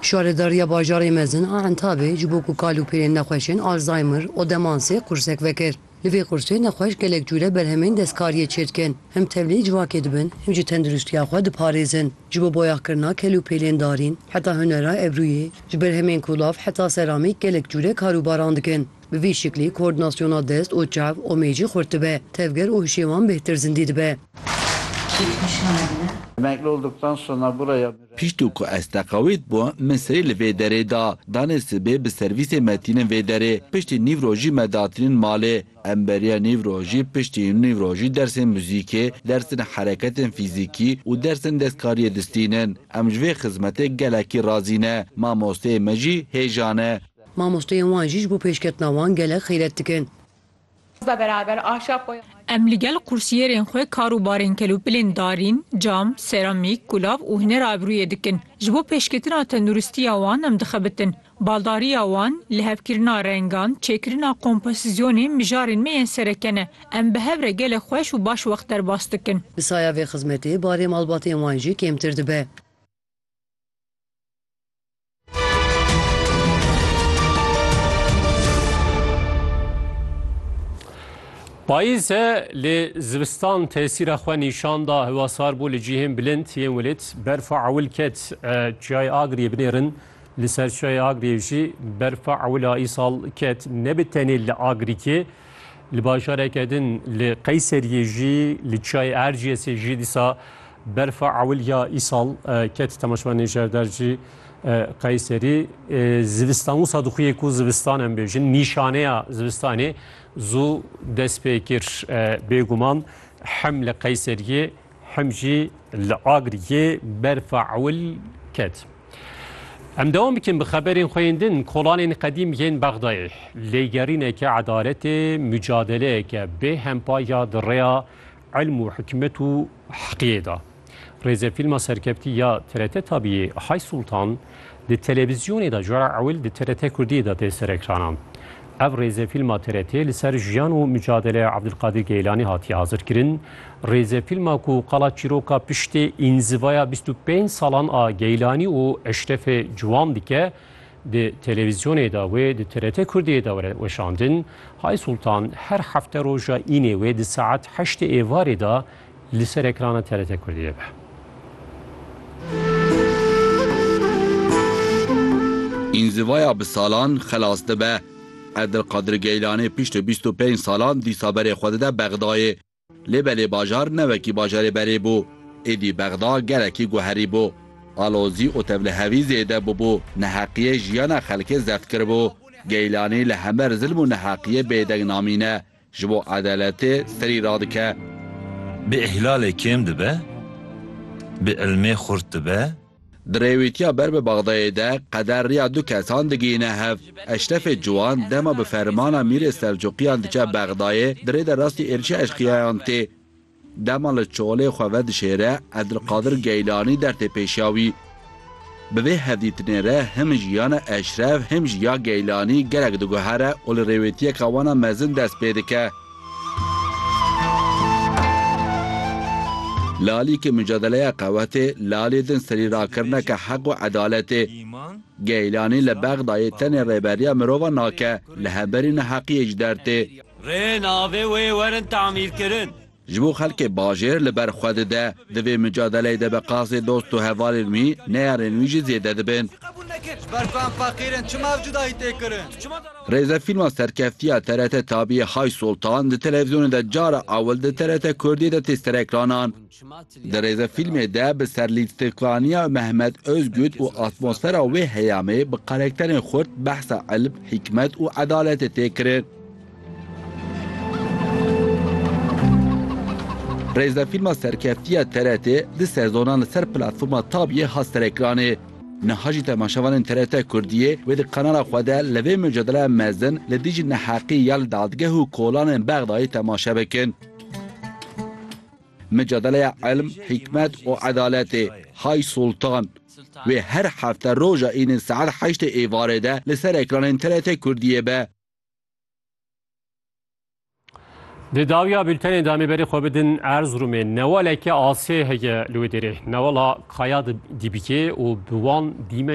Şaredariya Bajarê Mezin a Entabê ji bo ku kal û pîrên nexweşên Alzheimer û demansê qursek vekir. Li vê qursê nexweş gelek cûre berhemên destkariyê çêdikin. Him tevlî civakê dibin, him jî tenduristiya xwe diparêzin. Ji bo boyaxkirina kel û pêlên darîn heta hunera ebrûyê, ji berhemên kûlav heta seramîk gelek cûre kar û baran dikin. Bi vî şiklî koordinasyona dest û çav û mêcî xurt dibe, tevger û hişê wan bêhtir zindî dibe. Piştû ku ez teqewît bûm, min serî li vê derê da. Danê sibê bi servîsê me tînin vê derê. Piştî nîv rojî me datînin malê. Em beriya nîv rojî piştî nîv rojî dersên muzîkê, dersên hereketên fîzîkî û dersên destkariyê distînin. Em ji vê xizmetê gelekî razî ne. Mamosteyê me jî hêja ne. Mamosteyên wan jî ji bo pêşketina wan gelek xîret dikin. Em li gel qursiyerên xwe kar û barên kelûpilên darîn, cam, seramîk, kulav û huner a ebrûyê dikin. Ji bo pêşketina tenduristiya wan em dixebitin. Baldariya wan, lihevkirina rengan, çêkirina kompozisyonên mijarên me yên sereke ne. Em bi hev re gelek xweş û baş wext derbas dikin. Bi saya vê xizmetê barê malbatên wan jî kêmtir dibe. Payîz e lê zivistan tesîra xwe nîşan da hewa sar bû li cihên bilind yên welêt berfa ewil ket çiyayê Agriyê binêrin li ser çiyayê Agriyê jî berfa ewila îsal ket nebi tenê li Agrikê li bajareke din li Qeyseriyê jî li çiyayê Erciyesê jî dîsa Berfa ewilya îsal ketî temaşvanê jewder jî Qeyserî. Zivistan wisa dixuyê ku zivistan em bêjin, nîşaneya zivistanê zû dest pê kir. Bêguman hem li Qeyseriyê hem jî li Agiriyê berfa ewil ket. Em dewam bikin bi xeberên xwe yên din. Kolanên qedîm yên Bexdayê lêgerîneke edaletê, mucadeleyeke bê hempa ya di rêya Ilm û hikmet û heqiyê da. Rêzefîlma serkevtî ya TRT Tabiyê Hay Sultan di televîzyonê de cara ewil di TRT Kurdiyê de tê serekrana. Ev rêzefîlma TRT'ê li ser jiyan û micadeleya Abdulkadir Geylanî hatiye hazirkirin. Rêzefîlma ku qala çîroka piştê înzivaya bîst û pênc salan a Geylanî û Eşrefê Ciwan dike, Di televîzyonê de wê di TRT Kurdiyê de were weşandin, Hay Sultan her hefte roja înê wê di saet heştê êvarê de li ser ekrana TRT Kurdiyê be. Înzivaya bi salan xelas dibe. Edilqadir Geylanê piştî bîst û pênc salan dîsa berê xwe dide Bexdayê. Lê belê bajar ne wekî bajarê berê bû. Êdî Bexda gelekî guherî bû. Alozî û tevlihevî zêde bûbû, neheqiyê jiyana xelkê zeft kiribû. Geylanî li hember zilm û neheqiyê bêdeng namîne, ji bo edaletê serî radike. Bi îhlalê kêm dibe, bi îlmê xurt dibe. Di rêwîtiya ber bi Bexdayê de qeder riya du kesan digihîne hev. Eşrefê Ciwan dema bi fermana Mîrê Selcuqiyan diçe Bexdayê di rê de rastî êrişa eşqîyayan tê. Dema li çolê xwe vedişêre Edilqadir Geylanî der tê pêşiya wî. Bi vê hevdîtinê re him jiyana Eşref him jî ya Geylanî gelek diguhere û li rêwêtiyeke wana mezin dest pê dike. Li alî ke micadeleya qewetê, li alî din serî rakirneke heq û edaletê. Geylanî li Bexdayê tenê rêberiya mirovan nake, li hemberî neheqiyê ji der tê. Rê navê wê werin tamîrkirin. Ji bo xelkê bajêr li ber xwe dide. Di vê micadeleyê de bi qasê dost û hevalên wî, neyarên wî jî zêde dibin. Ji ber ku em feqîr in, çima ev cudayî tê kirin? Rêzefîlma serkeftiya TRT Tabiyê Hay Soltan di televîzyonê de cara ewil di TRT Kurdiyê de tê serekranan. Di rêzefîlmê de bi serlîstikaniya Mehmet Ozgut û atmosfera wê heyamê bi karekterên xurt behsa ilm, hîkmet û edaletê tê kirin. Rêzefîlma serkeftiya TRT'ê du sezonan li ser platforma Tabiyê hat serekranê. Niha jî temaşevanên TRT Kurdiyê wê di kanala xwe de li vê mucadeleya mezin li dijî neheqî ya li dadgeh û kolanên Bexdayê temaşe bikin. Mucadeleya Ilm, Hîkmet û Edaletê, Hay Sultan, wê her hefte roja Înê saet heştê êvarê de li ser ekranên TRT Kurdiyê be. Di dawiya bültenê de amê berê xwe bidin Erzurumê newaleke asê heye li wê derê. Newala Kaya Dibikê û bi wan dîmenê